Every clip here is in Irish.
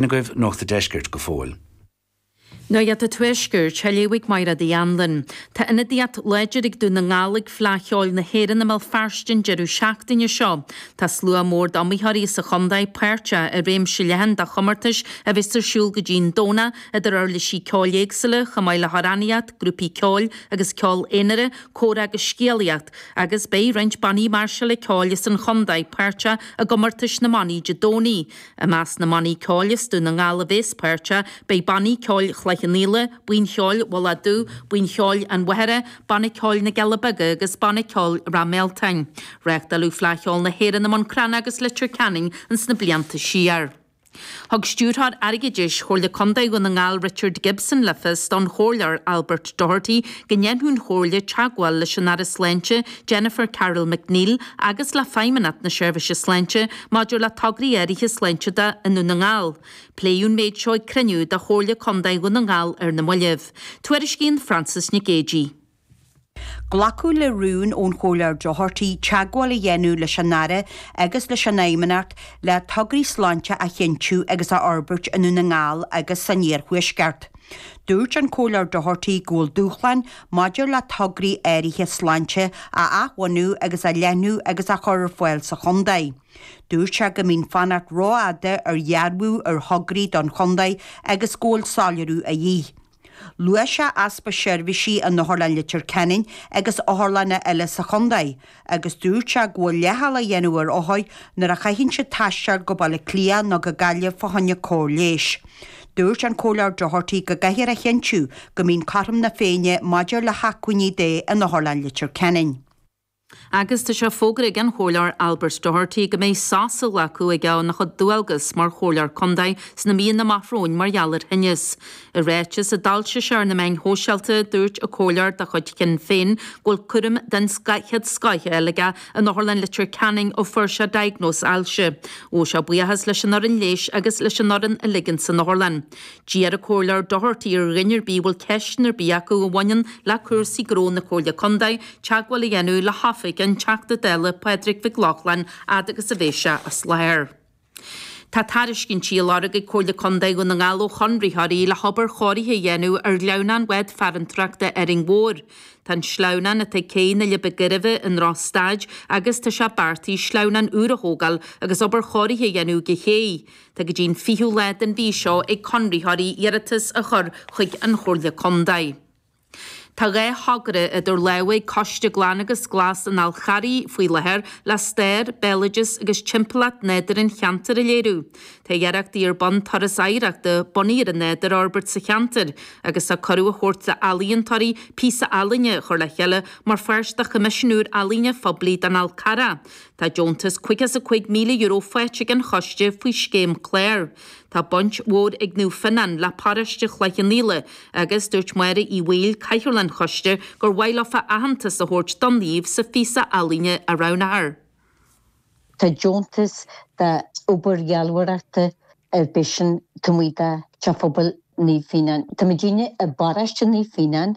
N agaibh Nuacht an Deiscirt go fóill? Nuacht an Tuaiscirt, á léamh ag Mairéad Uí Anluain. Tá ionadaíocht láidir ag Dún na nGall ag Fleadh Cheoil na hÉireann i mBéal Feirste an deireadh seachtaine seo. Tá slua mór d'iomaitheoirí sa chontae páirteach i réimse leathan de chomórtais a bheas ar siúl go dtí'n Domhnach, idir uirlisí ceoil éagsúla, chomh maith le hamhránaíocht, grúpaí ceoil agus ceol aonair, comhrá agus scéalaíocht, agus beidh roinnt bannaí máirseála ceoil as an chontae páirteach i gcomórtais na mbannaí Dé Domhnaigh. I measc na mbannaí ceoil as Dún na nGall a bheas páirteach, beidh Banna Ceoil Chloich Cheann Fhaola, Buíon Cheoil Mhullach Dubh, Buíon Cheoil an Mhachaire, Banna Ceoil na gCealla Beaga agus Banna Ceoil Ráth Mealtain. Reachtáladh Fleadh Cheoil na hÉireann i mBun Cranncha agus Leitir Ceanainn ins na blianta siar. Thug Stiúrthóir Airgeadais Chomhairle Contae Dhún na nGall Richard Gibson le fios don Chomhairleoir Albert Doherty go ndéanfadh an Chomhairle teagmháil leis an Aire Sláinte Jennifer Carroll MacNeill agus le Feidhmeannacht na Seirbhíse Sláinte maidir le tograí áirithe sláinte de i nDún na nGall. Pléadh an méid seo ag cruinniú de Chomhairle Contae Dhún na nGall ar na moillibh. Tuairiscíonn Frances Nic Géadaigh. Glacadh le rún ón Chomhairleoir Doherty teagmháil a dhéanamh leis an Aire agus leis an Fheidhmeannacht le tograí sláinte a chinntiú agus a fhorbairt i nDún na nGall agus san iarthuaisceart. Dúirt an Comhairleoir Doherty go bhfuil dúshláin maidir le tograí áirithe sláinte a athbhunú agus a leathnú agus a chur ar fáil sa chontae. Dúirt sé go mbíonn fanacht rófhada ar dhearbhú ar thograí don chontae agus go bhfuil soiléiriú a dhíth. Luaigh sé easpa seirbhísí in Otharlann Leitir Ceanainn agus otharlanna eile sa chontae, agus dúirt sé go bhfuil leithcheal á dhéanamh ar othair nuair a chaitheann siad taisteal go Baile Átha Cliath nó go Gaillimh fá choinne cóir leighis. Dúirt an Comhairleoir Doherty go gcaithfear a chinntiú go mbíonn cothrom na Féinne maidir le hacmhainní de in Otharlann Leitir Ceanainn. Agus tá sé fógartha ag an Chomhairleoir Albert Doherty go mbeidh sos á ghlacadh aige óna chuid dualgas mar Chomhairleoir Contae sna míonna amach romhainn mar gheall ar thinneas. I ráiteas a d'fhoilsigh sé ar na meáin shóisialta, dúirt an comhairleoir de chuid Shinn Féin go bhfuil cúram den chéad scoth aige in Otharlann Leitir Ceanainn ó fuair sé diagnóis ailse. Ghabh sé buíochas leis an fhoireann leighis agus leis an fhoireann uilig ins an otharlann. D'iarr an Comhairleoir Doherty ar dhuine ar bith a bhfuil ceisteanna ar bith acu a bhaineann le cúrsaí gnó na Comhairle Contae teagmháil a dhéanamh le hoifig an Teachta Dála Pádraig Mhic Lochlainn fhad agus a bheidh sé as láthair. Tá tairiscintí á lorg ag Comhairle Contae Dhún na nGall ó chonraitheoirí le hobair chóirithe a dhéanamh ar shleamhnán bhád farantóireachta Árainn Mhór. Tá an sleamhnán atá ag céidh na Leidhbe Gairbhe i ndrochstaid agus tá sé beartaithe sleamhnán úr a thógáil agus obair chóirithe a dhéanamh don chéidh. Tá go dtí an 20ú lá den mhí seo ag conraitheoirí iarratas a chur chuig an Chomhairle Contae. Tá dhá thogra idir lámha ag Coiste Glan agus Glas an Fháil Charraigh faoi láthair le stair, béaloideas agus timpeallacht nádúir an cheantair a léiriú. Tá iarrachtaí ar bun turas oidhreachta bunaithe ar an nádúr a fhorbairt sa cheantar agus tá cuireadh á thabhairt d'ealaíontóirí píosa ealaíne a chur le chéile mar pháirt de Choimisiún úr Ealaíne Phoiblí don Fhál Carrach. Tá deontas €55,000 faighte ag an choiste faoi scéim CLÁR. Tá baint mhór ag Naomh Fionán le paróiste Chloich Cheann Fhaola agus dúirt Máire Uí Bhaoill, cathaoirleach an choiste, gur mhaith leo aitheantas a thabhairt don naomh sa phíosa ealaíne a roghnófar. Tá deontas d'obair dhealbhóireachta ar bith, so tá muid, tá Teach Phobail Naomh Fionán. Tá muidinne i bparóiste Naomh Fionán.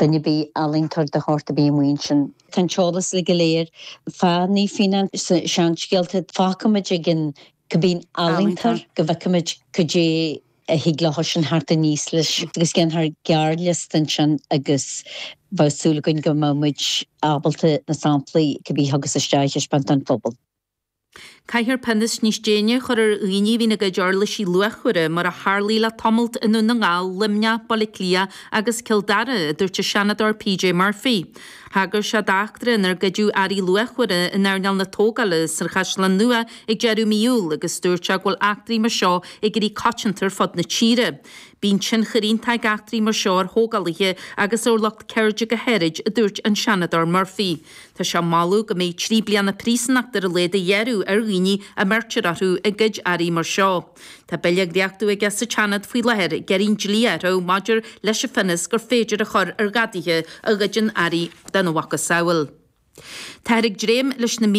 Duine ar bith, ealaíontóir de shórt ar bith amuigh ansin. Tá an t-eolas uile go léir fá Naomh Fíonán sna seanscéalta. Fágfaimid ag an cibé ealaíontóir go bhfeicfimid cad é a thig leo sin a theacht aníos leis agus dhéanfar gearrliosta ansin agus bheadh súil againn go mbeimid ábalta na samplaí cibé a thiocfas isteach a thaispeáint don phobal. Caithfear pionós níos déine a chur ar dhaoine a bhíonn ag goid uirlisí luachmhara, mar a tharlaigh le tamallt i nDún na nGall, Luimneach, Baile Átha Cliath agus Cill Dara, a dúirt an Seanadóir PJ Murphy. Thagair sé d'eachtra inar goideadh earraí luachmhara in earnáil na tógála sa Chaisleán Nua ag deireadh mí Iúil agus dúirt sé go bhfuil eachtraí mar seo ag éirí coitianta ar fud na tíre. Bíonn tionchar iontach ag eachtraí mar seo ar thógálaithe agus ar lucht ceirde go háirid, a dúirt an Seanadóir Murphy. Tá sé ag moladh go mbeidh trí bliana príosúnacht ar a laghad á ghearradh ar dhaoine a mbeirtear orthu ag goid earraí mar seo. Tá bille á dhréachtú aige sa tSeanad faoi láthair ag iarraidh an dlí a athrú maidir leis an bpionós gur féidir a chur ar ghadaithe a ghoideann earraí dá mhacasamhail. Táthar ag dréim leis na.